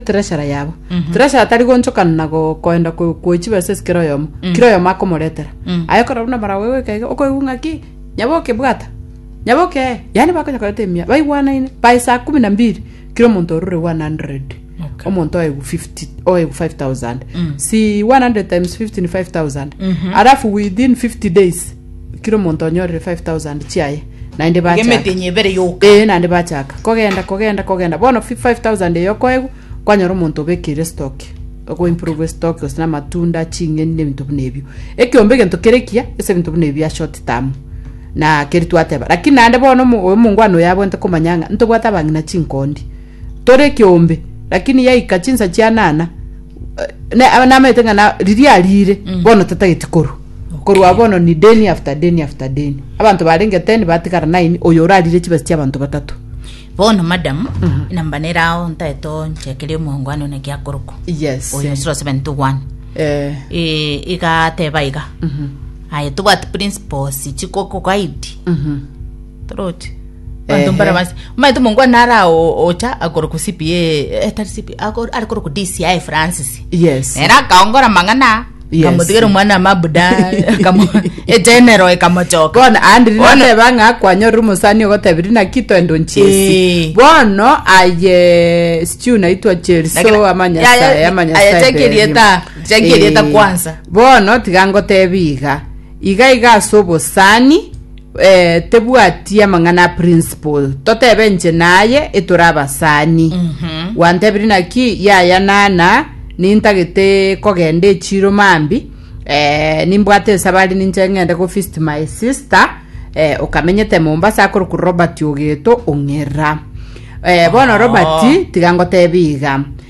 treasure yabo treasure tari gonchokana na go- koenda ko- koe chibesa ase kera oyomo kera oyomo akomoretera aye korora buna mara oye goika iga okoigwa ng'aki nyaboke bwata nyaboke eh yaani bakonya koreta emia baigwanaine by saa kumi na mbili kera omonto orure 100 Okay. omonto oegwa 50 oegwa 5000 si 100 times 50 ni 5000 alafu within 50 days Kera omonto onyorire five thousand chiaye, naende Iga bachaka. emetenya ebere yoka. Ee, naende bachaka. Kogenda, kogenda, kogenda. Bono fi- five thousand eyo okoegwa, kwanyora omonto obekeire stock. Okoimprove stock, gose na amatunda, ching'eni, na ebinto buna ebio. Ekeombe egento kere ekiya, ase ebinto buna ebio bia short term. Na keria twateba. Lakini naende bono omo- oyo omongwana oyo abwenerete komanya ng'a ntobwate abang'ina chinkondi. Tore ekeombe, lakini yaika chinsa chianana, Na- namaete ng'a na- riria arire bono tatageti korwa korwa Okay. bono ni deni after deni after deni abanto barenge ten batigara nine oyo orarire chibasi chia abanto batato bono madam namba nere ao ntaete onchekeria omongwana one giakorokwa yes oyo 071 eh, Eh, igateba iga aye tobwati principles chikokogaidi mhm. Throat. Bantu Ehe. mbara basi. Maito mongwa nara o- ocha akoro ku CPA eh, tari CPA akoro ari koro ku DCI Francis. yes Era akaongora mang'ana. Yes. Kamutigera mwana mabuda kamu e general ekamochoka. bono andiri Bono- nateba ng'a kwanyorire omosani ogotebiri naki twendo nchiesi Eh. bono aye sichiu naitwa cheriso Lakini- Ya- amanyasae ya- amanyasae aya cheki erieta- cheki erieta kwanza. bono tiga ngotebi iga iga iga ase obosani Eh, tebwati amang'ana a principle totebe nche naye etore abasani gwantebiri naki yaya nana nintagete kogenda echiro mambi eh, nimbwate esabari ninche ng'ende go visit my sister eh, okamenyete mombasa akorokwa robert ogeto ong'era eh, bono robert tiga ngotebi iga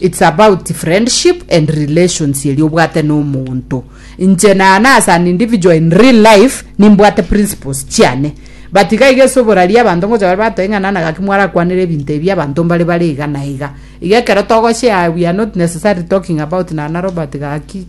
It's about friendship and relations eria obwate na omonto. Inche naana as an individual in real life nimbwate principles chiane. But iga iga ase oborari abanto ngocha bare batore ng'a nana gaki mwarakwanere ebinto ebi abanto mbare bare iga na iga. Iga ekero togoshare we are not necessarily talking about nana Robert gaki